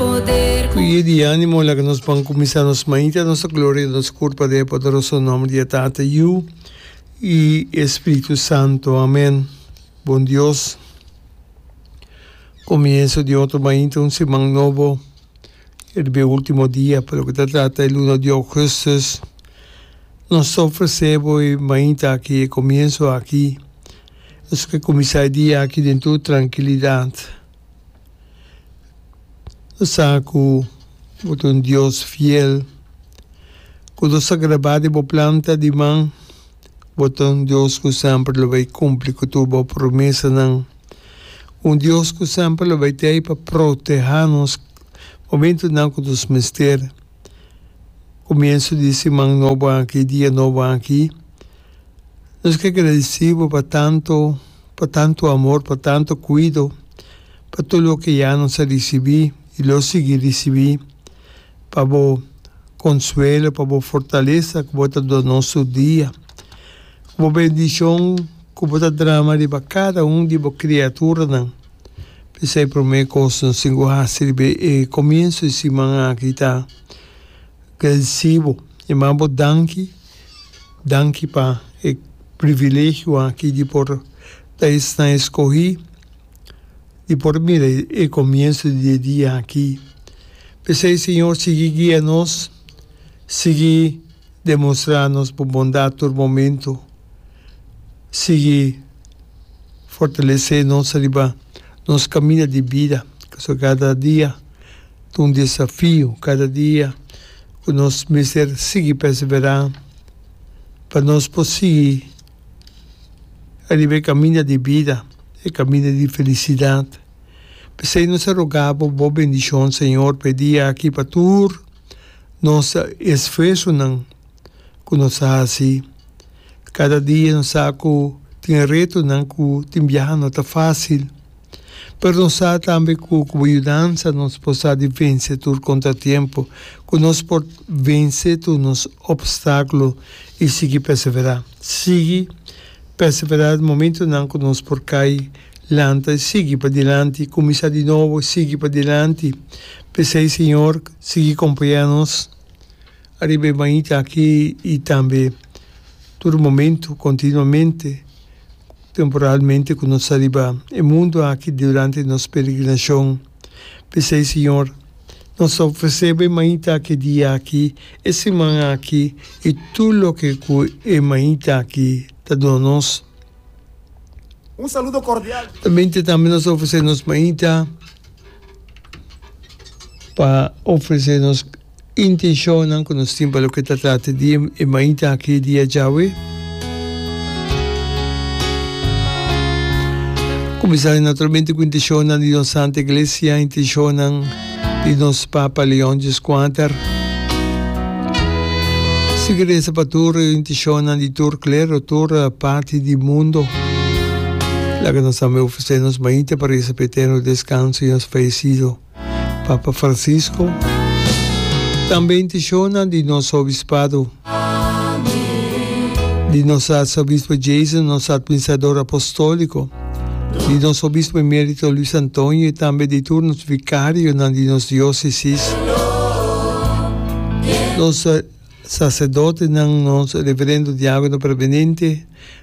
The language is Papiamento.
Ku ye di animo laga nos pon kuminsá nos mañita, nos ta gloria i nos kurpa den e poderoso nomber di e Tata, Yu i e Spiritu Santo. Amén. Bon Dios, komienso di otro mañita, un siman nobo, e riba e último dia pa loke ta trata e luna di Augustus, nos ta ofresé bo e mañita aki, e komienso aki. Nos ke kuminsá e dia aki den tur trankilidat. Lo sa ku bo ta un Dios fiel. Ku lo sa grabá den bo planta di man, bo ta un Dios ku semper lo bai kumpli ku tur bo promesanan. Un Dios ku semper lo bai t'ei pa protehá nos momentunan ku nos mester. Kumiensu di siman nobo aki, dia nobo aki. Nos ke gradisí bo pa tantu, pa tantu amor, pa tantu kuido, pa tur loke ya nos a risibí i lo sigui risibí, pa bo konsuelo, pa bo fortalesa ku bo ta duna nos tur dia, ku bo bendishon ku bo ta drama riba kada un di bo kriaturanan. P'esei promé kos nos tin ku hasi riba e komienso di siman aki ta gradisí bo, yamá bo danki Danki pa e privilegio aki di por ta esnan escogi, di por mira e comienso di e dia aki. P'esei, Señor, sigui guia nos, sigui demonstra nos Bo bondad tur momento, sigui fortalece nos riba nos caminda di bida, cazue cada dia. Ta un desafio kada dia ku nos mester sigui perseverá pa nos por sigui riba e kaminda di bida, e kaminda di felisidat. P'esei nos ta rogá bo bo bendishon, Señor, pa e dia aki, pa tur nos esfuersonan ku nos a hasi. Kada dia nos sa ku tin retonan ku tin biaha no ta fásil. Pero nos sa tambe cu cu bo yudansa nos por sa di vense tur contratiempo, cu nos por vense tur nos obstáculo y sigui persevera. Sigui persevera den momentonan cu nos por cay, lanta y sigui padilanti, cuminsa di nobo y sigui padilanti. P'esey, Señor, sigui compaña nos. Ariba e bañita aki i tambe tur momentu, kontinuamente, temporalmente ku nos ta riba e mundu aki durante nos peregrinashon. P'esei, Siñor, nos ta ofreseba e bañita aki e dia aki, e siman aki i tur loke ku e bañita aki ta duna nos. Un saludo kordial. Ta mente tambe nos ta ofresé nos bañita pa ofresé nos Intencionnan cu nos tin pa loke ta trata di e maita aki e dia djawe. Cuminsa naturalmente cu intencionnan di nos Santa Iglesia, intencionnan di nos Papa Leon Xvi. Sigui reza pa tur intencionnan di tur clero, tur parti di mundo. Laga nos tambe ofrece nos maita pa reza pa eterno descanso di nos fallecido. Papa Francisco tambe intishona di nos Obispado, di nos Arsobispo Jason, nos Atministrador Apostólico, di nos Obispo Emérito Luis Antonio i tambe di tur nos Vikarionan di nos Diósesis, nos Saserdotenan, nos Reverendo Diákono Permanente,